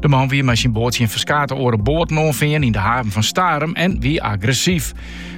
De man wie mei syn boat tsjin ferskate oare boaten oanfearn yn de haven fan Starum en wie agressyf.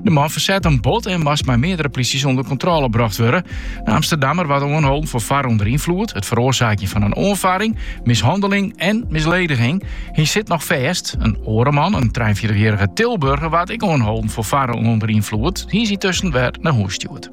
De man fersette him bot en moast mei meardere plysjes ûnder kontrôle brocht wurde. De Amsterdammer waard oanholden foar farren ûnder ynfloed, it feroarsaakjen fan in oanfarring, mishanneling en mislediging. Hy sit noch fêst. In oare man, in trije-en-fjirtichjierrige Tilburger, waard ek oanholden foar farren ûnder ynfloed. Hy is yntusken wer nei hûs stjoerd.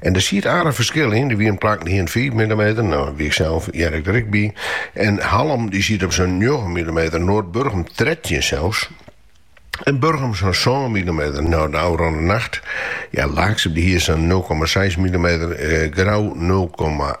En der siet aardich ferskil yn. Der wiene plakken dy hiene 5 mm, no wy, iksels hear ik der ek by. En Hallum dy siet op sa'n 9 mm, Noardburgum 13 sels. En Burgum sa'n 7 mm. No, de ôfrûne nacht, ja, Laaksum dy hiene sa'n 0,6 mm, eh, Grou 0,8.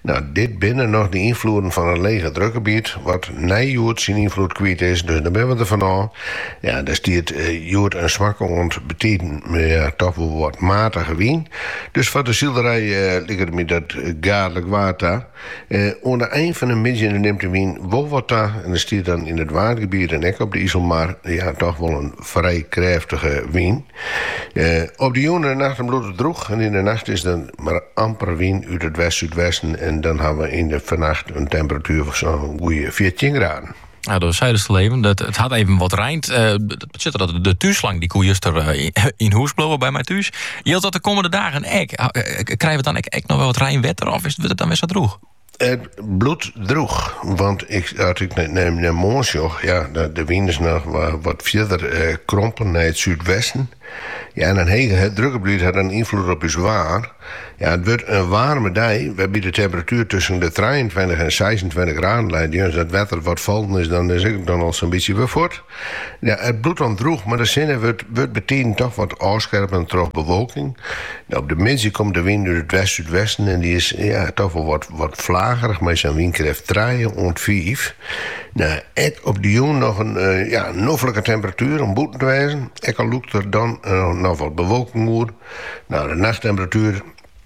No, dit binne noch de ynfloeden fan it legedrukgebiet, wat nei hjoed syn ynfloed kwyt is, dus no binne we der fanôf. Ja, der stiet hjoed in swakke oant bytiden, ja, toch wol wat matige wyn. Dus foar de silerij liket my dat gaadlik waar ta. Oan de ein fan de middei nimt de wyn wol wat ta en der stiet dan yn it Waadgebiet en ek op de Iselmar, ja, toch wol in frij krêftige wyn. Op de jûn en de nacht dan bliuwt it drûch en yn de nacht is der mar amper wyn út it west-súdwesten en dan hawwe we yn de foarnacht in temperatuer fan sa'n goede fjirtjin graden. Ja, do seidest al even. It, it hat even wat reind. Uh, eh, sadat de túnslang dy koe juster eh, yn hûs bliuwe by my thús. Jildt dat de kommende dagen ek? Eh, krije we dan ek, ek noch wol wat reinwetter of is it dan wer sa drûch? It bliuwt droech, want ik, as ik nei moarn sjoch, ja, de wyn is noch wat fierder eh, krompen nei it súdwesten. Ja, en in hegedrukgebiet hat dan ynfloed op ús waar. Ja, it wurdt in waarme dei, wêrby't de temperatuer tusken de trijeentweintich en seisentweintich graden leit. Ja, dus dat wetter wat fallen is, dan is ek dan al sa'n bytsje wer fuort. No, it bliuwt dan drûch, mar de sinne wurdt bytiden toch wat ôfskerme troch bewolking. No, op de middei komt de wyn út it west-súdwesten en dy is toch wol wat flagerich mei sa'n wynkrêft trije oant fiif. No, ek op de jûn noch in noflike temperatuer om bûten te wêzen, ek al lûkt der dan noch wat bewolking oer. No, de nachttemperatuer.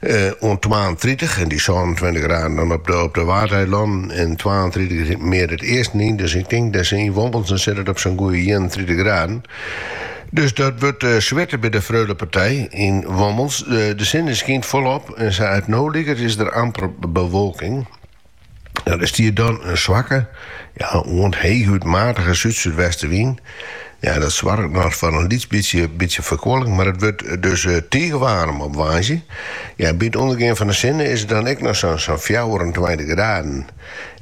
Eh, oant twaentritich en dy sânentweintich graden dan op de, op de Waadeilannen. En twaentritich is mear it easten yn. Dus ik tink dat se yn Wommels, dan sit it op sa'n goede 31 graden. Dus dat wurdt uh, eh, switten by de Freulepartij yn Wommels. De, de sinne skynt folop en sa't it no liket is der amper bewolking. No, der stiet dan in swakke, ja, oant heechút matige súd-súdwestewyn. Ja, dat soarget noch foar in lyts bytsje, bytsje ferkoeling, mar it wurdt dus eh, tige waarm op woansdei. Ja, by it ûndergean fan de sinne is it dan ek noch sa'n sa'n fjouwerentweintich graden.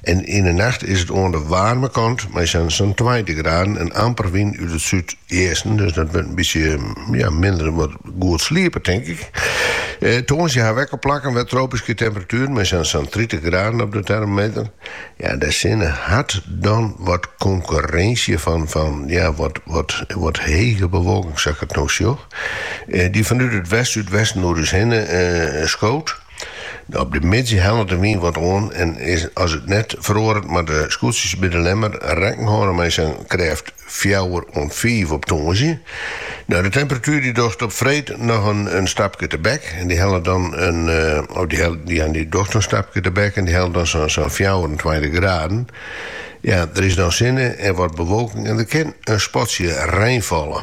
En yn de nacht is it oan de waarme kant mei sa'n sa'n tweintich graden en amper wyn út it súdeasten, dus dat wurdt in bytsje, ja, minder, wat, Goed sliepe, tink ik. Tongersdei hawwe we ek op plakken wer tropyske temperatueren, mei sa'n tritich graden op de termometer. Ja, de sinne hat dan wat konkurrinsje fan, fan ja, wat, wat, wat hege bewolking, sa ik it no sjoch, dy't fanút it west-súdwesten oer ús hinne skoot. Op de middei hellet de wyn wat oan en as it net feroaret moatte de skûtsjes by De Lemmer rekken hâlde mei sa'n krêft fjouwer oant fiif op tongersdei. No, de temperatuer dy't docht op freed noch in stapke tebek en dy hellet dan sa'n fjouwerentweintich graden. Ja, der is dan sinne en wat bewolking en der kin in spatsje rein falle.